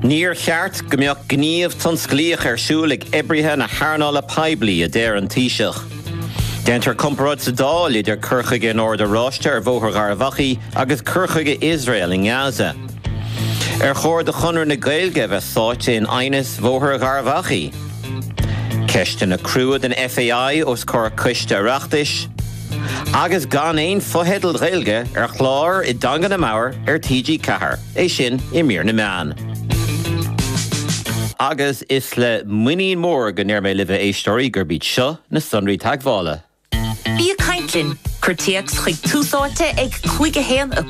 Níor cheart go mbeadh gníomh tionsclaíoch ar siúl ag oibrithe na hearnála poiblí, a deir an Taoiseach. Déantar comparáid sa Dáil idir cur chuige an Oird Oráiste ar Bhóthar Gharbh Achaidh agus cur chuige Iosrael i nGaza. Ar chóir do Chonradh na Gaeilge a bheith sáite in aighneas Bhóthar Gharbh Achaidh? Ceisteanna crua don FAI os comhair coiste Oireachtais. Agus gan aon fotheidil Ghaeilge ar chláir i dteanga an namhad ar TG4, é sin i mír na meán. Agus is le muinín mór go ndeir mé libh, a éisteoirí, gurb iad seo na sonraí teagmhála. Bí ag caint linn! Cuir téacs chuig Tús Áite ag 5 1 i.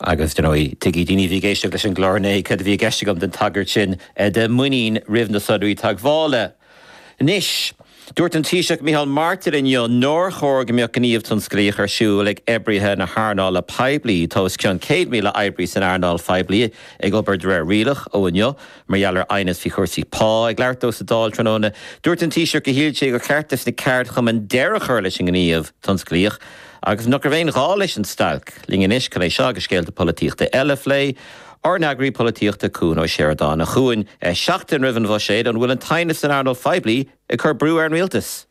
Agus, ar ndóigh, tuigfidh daoine a bhí ag éisteacht leis an gclár inné cad a bhí i gceist agam leis an tagairt sin do mhuinín roimh na sonraí teagmhála. Anois, dúirt an Taoiseach Micheál Martin inniu nár chóir go mbeadh gníomh tionsclaíoch ar siúl ag oibrithe na hearnála poiblí tá os cionn 100,000 oibrí san earnáil phoiblí ag obair de réir rialach ó inniu mar gheall ar aighneas faoi chúrsaí pá. Ag labhairt dó sa Dáil tráthnóna, dúirt an Taoiseach gur shíl sé gur cheart do na ceardchumainn deireadh a chur leis an ngníomh tionsclaíoch Agus nach raibh aon ghá leis an stailc. Linn anois chun é seo agus scéalta polaitíochta eile a phlé. Ár n-eagarthóir polaitíochta, Cuan Ó Seireadáin, a Chuain seachtain roimh an bhuiséad. An bhfuil an t-aighneas san earnáil phoiblí ag cur brú ar an rialtas?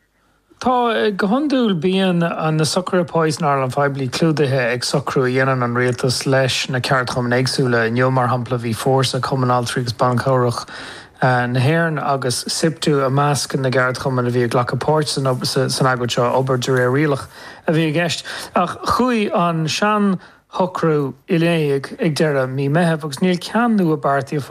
Tá, go hiondúil. Bíonn na socruithe pá san earnáil phoiblí clúdaithe ag socrú a dhéanann an rialtas leis na ceardchumainn éagsúla. Inniu, mar shampla, bhí Fórsa, Cumann Altraí agus Ban Cabhrach na hÉireann agus Siptu i measc na gceardchumann a bhí ag glacadh páirt san agóid seo. Obair de réir rialach a bhí i gceist. Ach chuaigh an seanshocrú in éag ag deireadh mí Meitheamh agus níl ceann nua beartaithe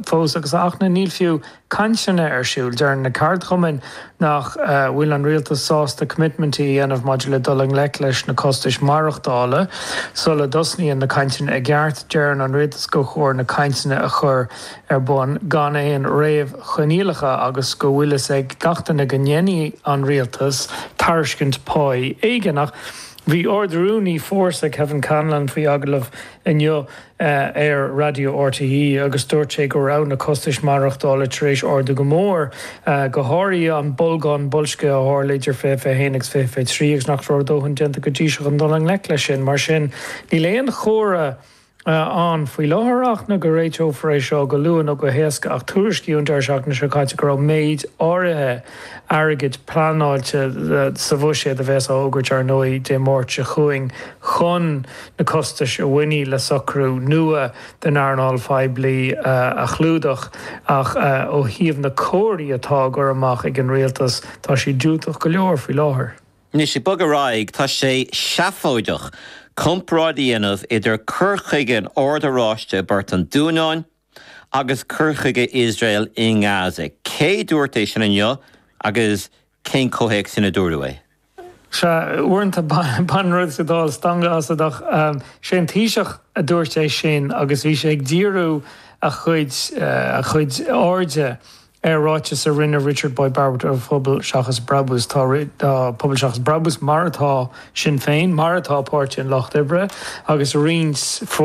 fós agus ach níl fiú cainteanna ar siúl. Deir na ceardchumainn nach bhfuil an rialtas sásta coimitmintí a dhéanamh maidir le dul i ngleic leis na costais maireachtála sula dtosnaíonn na cainteanna i gceart. Deireann an rialtas gur chóir na cainteanna a chur ar bun gan aon réamhchoinníollacha agus go bhfuileas ag glacadh leis go ndéanfaidh an rialtas tairiscint pá éigin. Ach bhí Ard-Rúnaí Fórsa, Kevin Callinan, faoi agallamh inniu ar Raidió RTÉ agus dúirt sé go raibh na costais maireachtála tar éis ardú go mór, go háirithe an bolgán boilscithe a tharla idir 2021 agus 2023 agus nach raibh a dhóthain déanta go dtí seo chun dul i ngleic leis sin. Mar sin níl aon chomhartha ann faoi láthair ach na go réiteofar é seo go luath nó go héasca ach tuairiscíodh an deireadh seachtaine seo caite go raibh méid áirithe airgid pleanáilte sa bhuiséad a bheas á fhógairt, ar ndóigh, Dé Máirt seo chugainn chun na costais a bhainfidh le socrú nua den earnáil phoiblí a chlúdach ach ó thaobh na gcomharthaí atá á gcur amach ag an rialtas tá sé diúltach go leor faoi láthair. Anois, ag bogadh ar aghaidh, tá sé seafóideach comparáid a dhéanamh idir cur chuige an Oird Oráiste i bPort an Dúnáin agus cur chuige Iosrael i nGaza. Cé a dúirt é sin inniu agus cén comhthéacs ina dúradh é? Sea, uaireanta baineann rud sa Dáil stangadh asat ach is é an Taoiseach a dúirt é sin agus bhí sé ag díriú a chuid airde Ar ráiteas a rinne Richard Boyd Barrett ó Phobal Seachas Brabús, tá Pobal Seachas Brabús, mar atá Sinn Féin, mar atá Páirtí an Lucht Oibre, agus roinnt.